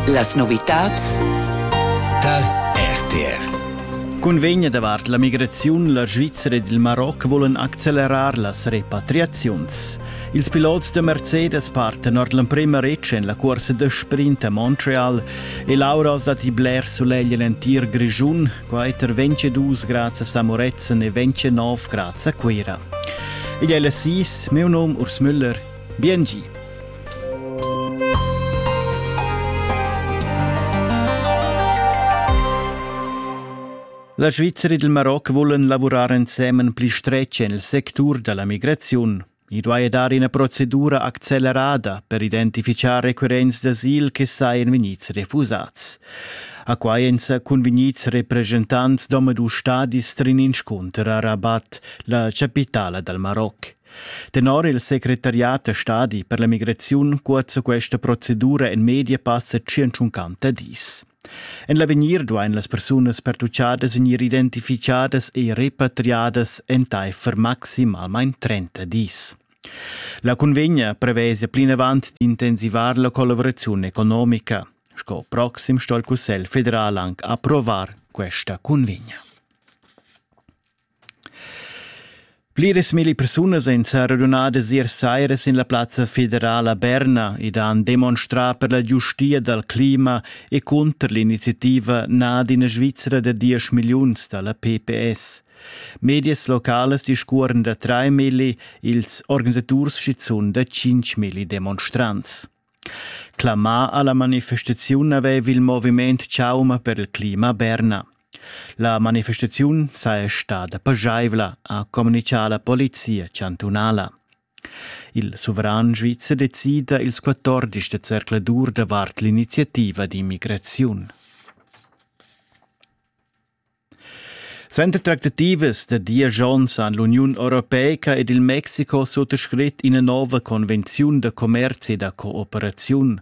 Las novitads tar RTR. Cunvegna davart la migraziun la Svizzera ed il Maroc volan accelerar las repatriaziuns. Ils pilots da Mercedes partan ord l'emprima retg en la cursa da sprint a Montreal e l'aura als datti bler sulegl en l'entir Grischun, quai tar 22 grads a Moretzen e 29 grads a Cuira. Igl è las 6, meu num Urs Müller Biengi. La Svizra e il Maroc volan lavurar ensemen pli stretg en il sectur da la migraziun. I duai dar ina procedura accelerada per identifichar requirents d'asil che sajan vegnids refusads. A quai èn sa convegnids represchentants d'omadus stadis trin inscunter a Rabat, la chapitala dal Maroc. Tenor il secretariat da stadi per la migraziun cuozza questa procedura en media passa 150 dis. En l'avegnir duain las persunas pertuchadas vegnir identificadas e repatriadas entaifer maximalmain 30 dis. La convegna prevesa plinavant d'intensivar la collaborazione economica. Sco proxim sto il Cussegl federal anche approvar questa convegna. Pliras milli persunas ein seradunadas ier saira sin la plazza federala Berna ed han demonstrà per la giustia dal clima e cunter l'iniziativa nad ina Svizra da diesch milliuns da la PPS. Medias localas discuoran da trai milli, ils organisaturs schizun da cinc milli demonstrants. Clamà alla manifestaziun haveva il moviment Chauma per il clima a Berna. La manifestaziun saja stada pageivla, ha communichà la polizia chantunala. Il suveran svizzer decida ils 14 da zercladur davart l'iniziativa d'immigraziun. Center tractativas da diesch onns han l'Uniun europeica ed il Mexico suttascrit ina nova convenziun da commerzi e da cooperaziun.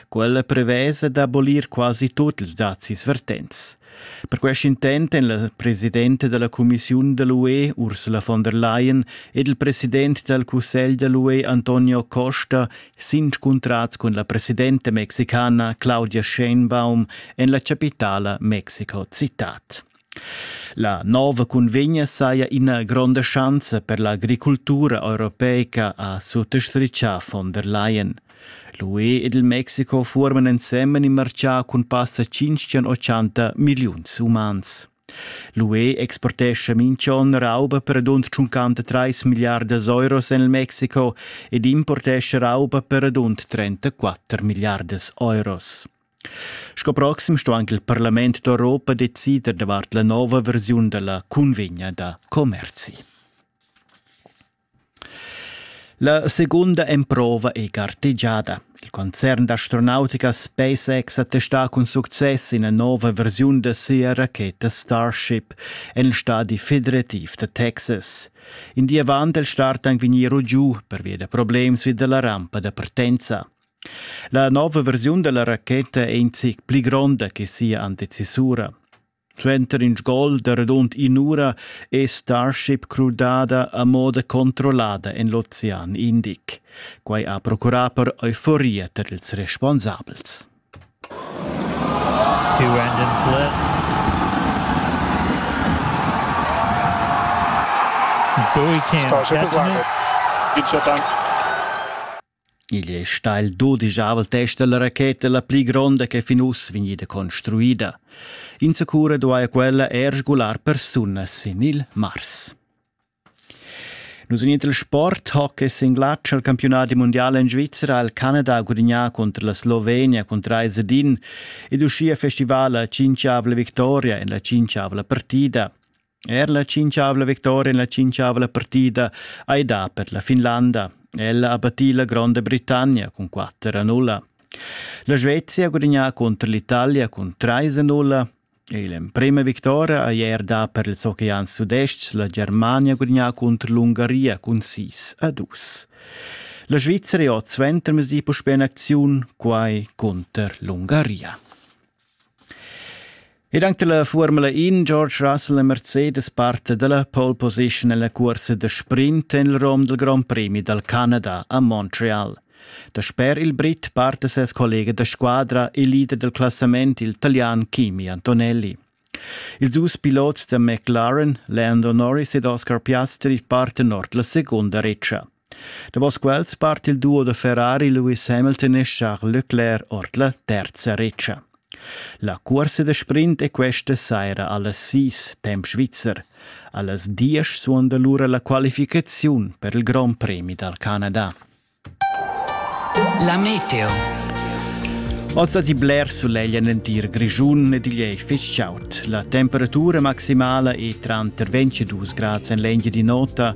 Quella prevesa d'abolir quasi tut ils dazis vertents. Per quest intent èn la presidenta della Commissiun da l'UE Ursula von der Leyen ed il president dal Cussegl da l'UE Antonio Costa s'inscuntrats cun la presidenta mexicana Claudia Sheinbaum en la chapitala Mexico citat. La nova cunvegna saja ina gronda schanza per l'agricultura europeica, ha suttostrichà von der Leyen. L'UE ed il Mexiko fuorman ensemen in marcià cun passa 580 milliuns umans. L'UE exportescha minch'on rauba per adunt tschuncanta trais milliardas euros en il Mexico ed importescha rauba per adunt 34 milliardas euros. Sco proxim sto anche il Parlament d'Europa decider davart la nova versiun della convegna da commerzi. La seguonda emprova ei gartegiada. Il concern d'astronautica SpaceX attestà cun success ina nova versiun da sia racheta Starship en il stadi federativ da Texas. In di avant il start ein vegnir giu pervia da problems vi dalla rampa da partenza. La nova versiun dalla racheta è in zic pli gronda che sia antecisura. Suenter in gol da radund in'ura è Starship crudada a moda controllada en l'ocean Indic. Quai ha procurà per euforia tar ils responsabels. Two end in flip. Bowie Starship is landed. Good shot time. Igl ei stau il dudischavel test dalla racheta la pli gronda che fin uss vegnida construida. Insacura duaja quella er sgular persunas sin il Mars. Nus in il sport hockey sin glatsch al campionati mondial in Svizzera ha il Canada gudignà contro la Slovenia cun 3 din ed uschia festival la cinquiavla victoria en la cinquiavla partida. Er la tschintgavla victoria en la tschintgavla partida ei dà per la Finlanda. Ella ha battì la Gronda Britannia cun 4 a 0. La Svezia ha gudagnà contro l'Italia cun 3 a 0 e l'emprema vittoria ei er da per ils oceans sudest la Germania gudagnà contro l'Ungaria cun 6 a 2. La Svizzera ha suenter mesi puspè in acziun, quai contro l'Ungaria. Ed anche la Formula In George Russell e Mercedes parte dalla pole position nella corsa da sprint en il rom del Grand Prix dal Canada a Montreal. Dasper il Brit parte ses collega da squadra e leader del classament, il italian Kimi Antonelli. Ils dus pilots da McLaren, Lando Norris ed Oscar Piastri parten ord la secunda retscha. Davos quels part il duo da Ferrari Lewis Hamilton e Charles Leclerc ord la terza retscha. La cuorsa da sprint è questa saira allas sis, temp svizzer. Allas diesch suonda lura la qualificaziun per il Grand Premi dal Canada. La meteo. Oz ha bler sulegl en l'entir Grischun ed igl è fitg chaud. La temperatura maximala è tranter 22 grads en l'engia di nota